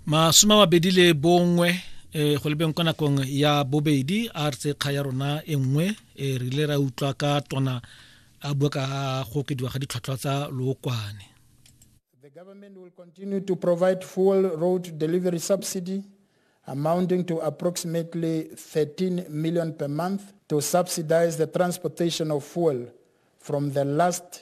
masome a mabedi le bongwe um go lebeng kwa nakong ya bobedi a re tse kga ya rona e nngwe um re ile ra utlwa ka tona a bua ka go okediwa ga ditlhwatlhwa tsa lookwane The government will continue to provide fuel road delivery subsidy amounting to approximately 13 million per month to subsidize the transportation of fuel from the last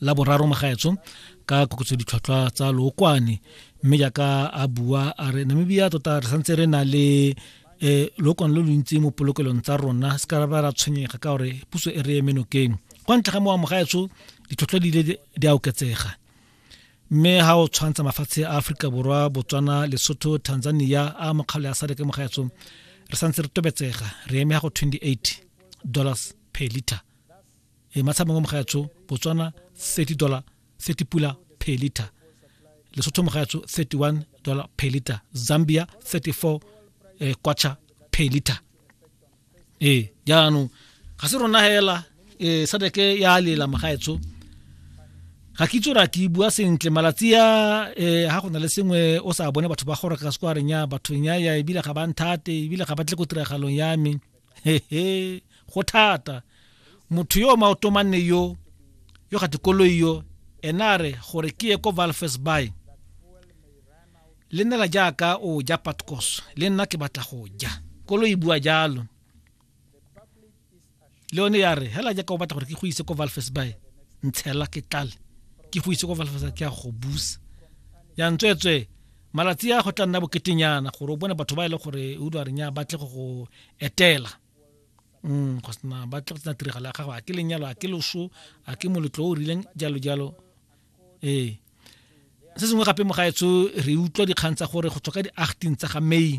la boraro magaetso ka koketso ditlhwatlhwa tsa lookwane mme jaaka a bua a re namibia tota re santse re na le um lookwane lo lontsi mo polokelong tsa rona se ka ba ra tshwenyega ka gore puso e re emenokeng kwa ntlha ga mowa mogaetso ditlhotlhwa di ile di a oketsega mme ha o tshwantsha mafatshe a aforika borwa botswana lesotho tanzania a mokgalo ya sadeke mogaetso re santse re tobetsega re eme ya go 28 dollars per liter e matshamang wa mogaetsho botswana 30 dollar 30 pula per liter lesotho mogaetsho 31 dollar per liter zambia 34 eh, kwacha per liter ee jaanong ga se rona hela eh, sadeke ya lela mogaetsho ga ke itse gore ke bua sentle malatsi a eh, ga go na le sengwe o sa bone batho ba gore ka sekwareng ya bathong ya ya ebile ga ba nthate ebile ga ba tle ko tiragalong ya me hehe go thata motho yo maotomanne yo yo ga dikoloi yo ena a re gore ke ye ko valfes by le nela jaaka o ja patcos le nna ke batla go ja koloi bua jalo le yone ya re hela jaaka o batla gore ke go ise ko valfes by ntshela ke tlale ke go ise ko valfes ke ya go busa ya ntswetswe malatsi a go tla nna boketenyana gore o bone batho ba e le gore o dwa renya ba tle go go etela um go sena ba tle go tsena tiragalo ya gago a ke lenyalo a ke loso a ke moletlo o rileng jalo jalo ee se sengwe gape mogaetsho re utlwa dikgang tsa gore go tswa ka di-acting tsa ga may